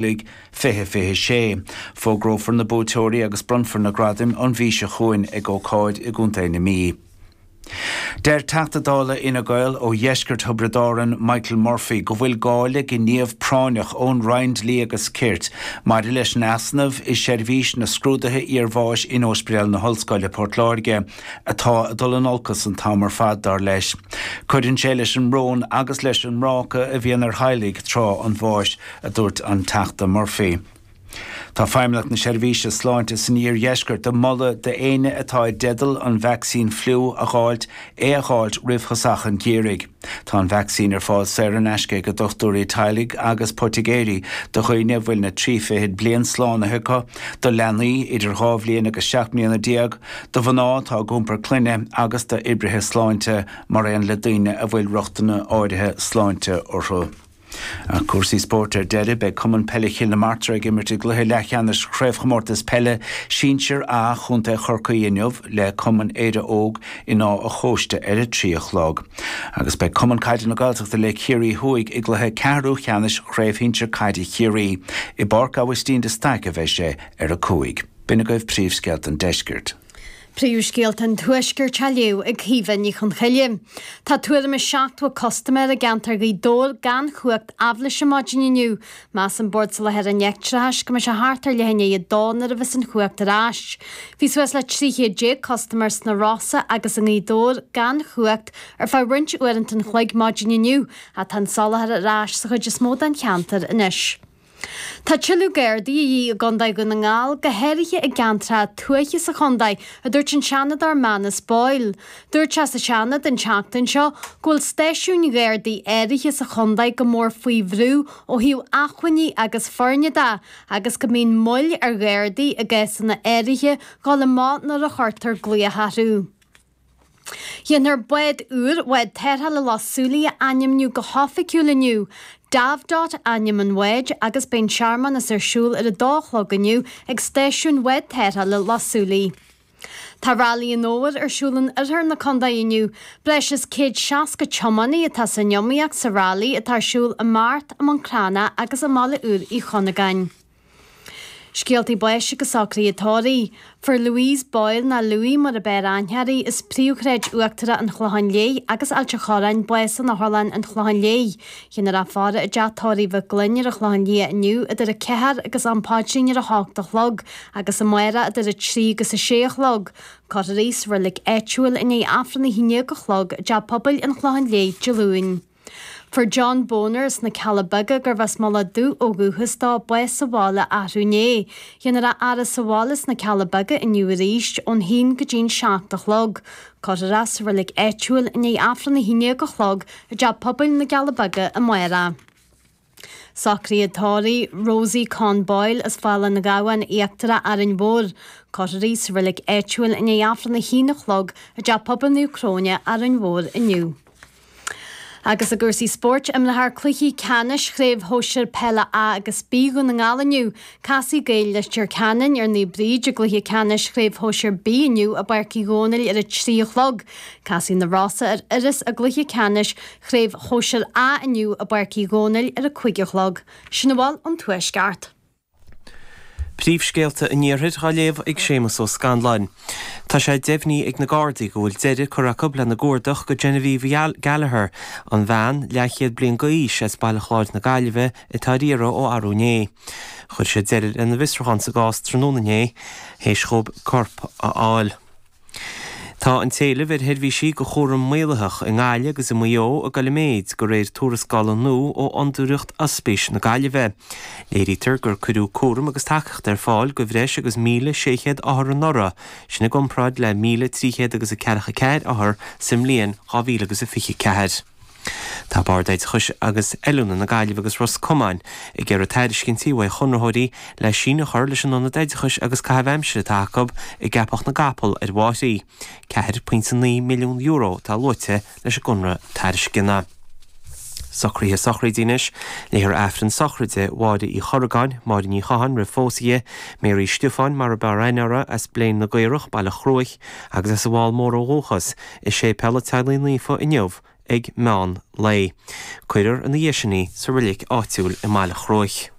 Nollaig 2026. Fógrófar na buaiteoirí agus bronnfar na gradaim an mhí seo chugainn ag ócáid i gContae na Mí. Deir Teachta Dála Fhine Gael ó dheisceart Thiobraid Árann, Michael Murphy, go bhfuil gá le gníomh práinneach ón Roinn Dlí agus Cirt maidir leis an easnamh i seirbhís na scrúduithe iarbháis in Óispidéal na hOllscoile, Port Láirge. atá ag dul in olcas an t-am ar fad, dar leis. Cuireann sé leis an mbrón agus leis an mbráca a bhíonn ar theaghlaigh tráth an bháis, a dúirt an Teachta Murphy. Tá Feidhmeannacht na Seirbhíse Sláinte san iardheisceart ag moladh d'éinne atá i dteideal an vacsaín fliú a dh'fháilt é a dh'fháilt roimh thosach an gheimhridh. Tá an vacsaín ar fáil saor in aisce ag dochtúirí teaghlaigh agus poitigéirí do dhaoine a bhfuil na trí fichid bliain slánaithe acu, do leanaí idir dhá bhliain agus seacht mbliana déag, do mhná atá ag iompar clainne agus d'oibrithe sláinte mar aon le daoine a bhfuil riochtanna áirithe sláinte orthu. Ar chúrsaí spóirt ar deireadh, beidh Cumann Peile Chill na Martra ag imirt i gcluiche leathcheannais Chraobhchomórtas Peile Sinsear A Chontae Chorcaí inniu le Cumann Éire Óg in Áth a' Chóiste ar a trí a chlog agus beidh Cumann Caide na Gaeltachta le Ciarraí Thuaidh i gcluiche ceathrúcheannais Chraobh Shinsear Caide Chiarraí. I bPáirc Aibhistín de Staic a bheidh sé ar a cúig. B'in agaibh príomhscéalta an Deiscirt. Príomhscéalta an Tuaiscirt á léamh ag Caoimhe Ní Chonchoille. Tá tuairim is 70 custaiméir i gceantar Ghaoth Dobhair gan chumhacht aibhléise maidin inniu. Measann Bord Soláthair an Leictreachais go mbeidh sé thart ar leath i ndiaidh a dó nuair a bheas an chumhacht ar ais. Bhí suas le 13 chéad custaiméir sna Rosa agus i nGaoth Dobhair gan chumhacht ar feadh roinnt uaireanta an chloig maidin inniu ach tá an soláthar ar ais sa chuid is mó den cheantar anois. Tá tuilleadh Gardaí de dhíth i gCondae Dhún na nGall, go háirithe i gceantracha tuaithe sa chondae, a dúirt an Seanadóir Manus Boyle. Dúirt sé sa Seanad an tseachtain seo go bhfuil stáisiúin Ghardaí áirithe sa chondae go mór faoi bhrú ó thaobh acmhainní agus foirne de agus go mbíonn moill ar Ghardaí i gcásanna áirithe dul amach nuair a chuirtear glaoch orthu. Dhéanfar bád úr Bhád Tarrthála Loch Súilí a ainmniú go hoifigiúil inniu. Davdot ainm an bháid agus beidh an searmanas ar siúl ar a dó a chlog inniu ag stáisiún Bhád Tarrthála Loch Súilí. Tá Railí an Fhómhair ar siúl in oirthear na condae inniu. Breis is céad seasca tiománaí atá san iomaíocht sa railí atá ar siúl i mBeart, i mBun Cranncha agus i mBaile Úr Uí Chuinneagáin. Scéaltaí Báis agus socruithe tórraimh. Fuair Louise Boyle, nó Louie mar ab fhearr aithne uirthi, as Príomhshráid Uachtarach an Chlocháin Léith agus Ailt an Chorráin bás in Otharlann an Chlocháin Léith. Dhéanfar í a fhaire i dteach tórraimh Mhig Fhloinn ar an Chlochán Liath inniu idir 4 agus an paidrín ar a hocht a chlog agus amárach idir 3 agus 6 a chlog. Cuirfear í sa reilig áitiúil i ndiaidh Aifreann a haon déag a chlog i dTeach Pobail an Chlocháin Léith Dé Luain. Fuair John Boner as na Cealla Beaga gurbh as Mullach Dubh ó dhúchas dó bás sa bhaile arú inné. Déanfar a fhaire sa bhaile sna Cealla Beaga inniu arís, ón haon go dtí'n seacht a chlog. Cuirfear é sa reilig áitiúil i ndiaidh Aifreann a haon déag a chlog i dteach pobail na gCealla Beaga amárach. Socruithe tórraimh Rosie Con Boyle as Fál an Ghabhann Íochtarach Árainn Mhór, cuirfear í sa reilig áitiúil i ndiaidh Aifreann a haon a chlog i dTeach Pobail Naomh Cróine, Árainn Mhór inniu. Agus i gcúrsaí spóirt, imreofar cluichí ceannais Chraobh Shóisir Peile A agus B Dhún na nGall inniu. Casfaidh Gaeil Leitir Ceanainn ar Naomh Bríd i gcluiche ceannais Chraobh Shóisir B inniu i bPáirc Uí Dhónaill ar a trí a chlog. Casfaidh Na Rosa ar Iorras i gcluiche ceannais Chraobh Shóisir A inniu i bPáirc Uí Dhónaill ar a cúig a chlog. Sin a bhfuil ón Tuaisceart. Príomhscéalta an Iarthair á léamh ag Séamus Ó Scanláin. Tá sé deimhnithe ag na Gardaí go bhfuil deireadh curtha acu lena gcuardach go Genevieve Gallagher, an bhean, leathchéad bliain d'aois, as Baile Chláir na Gaillimhe atá ar iarraidh ó arú inné. Chuir siad deireadh lena bhfiosrúchán sa gcás tráthnóna inné, théis dhóibh corp a fháil. Tá an t-éileamh ar sheirbhísí go chúram maolaitheach i nGaillimh agus i Maigh Eo ag dul i méid, de réir tuarascála nua ó Fhondúireacht Ospís na Gaillimhe. Léirítear gur cuireadh cúram agus tacaíocht ar fáil go bhreis agus 1,600 othar anuraidh, sin i gcomparáid le 1,300 agus a ceathracha ceathair othar sa mbliain 2024. Tá Bord Oideachais agus Oiliúna na Gaillimhe agus Ros Comáin ag iarraidh tairiscintí uaidh chonraitheoirí le síneadh a chur leis an ionad oideachais agus caitheamh aimsire atá acu i gCeapach na gCapall ar an bhFairche. €4.9 milliún atá luaite leis an gconradh tairisceana. Socruithe Sochraide Anois léifear Aifreann Sochraide Mháire Uí Chorragáin, Máire Ní Chatháin, roimh phósadh di, Mary Stiofáin, mar ab fhearr aithne uirthi, as Bléan na gCaorach, Baile Chruaich, agus as an bhFál Mór ó dhúchas, i Séipéal a' Teaghlaigh Naofa inniu ag meán lae. Cuirear ina dhiaidh sin í sa reilig áitiúil i mBaile Chruaich.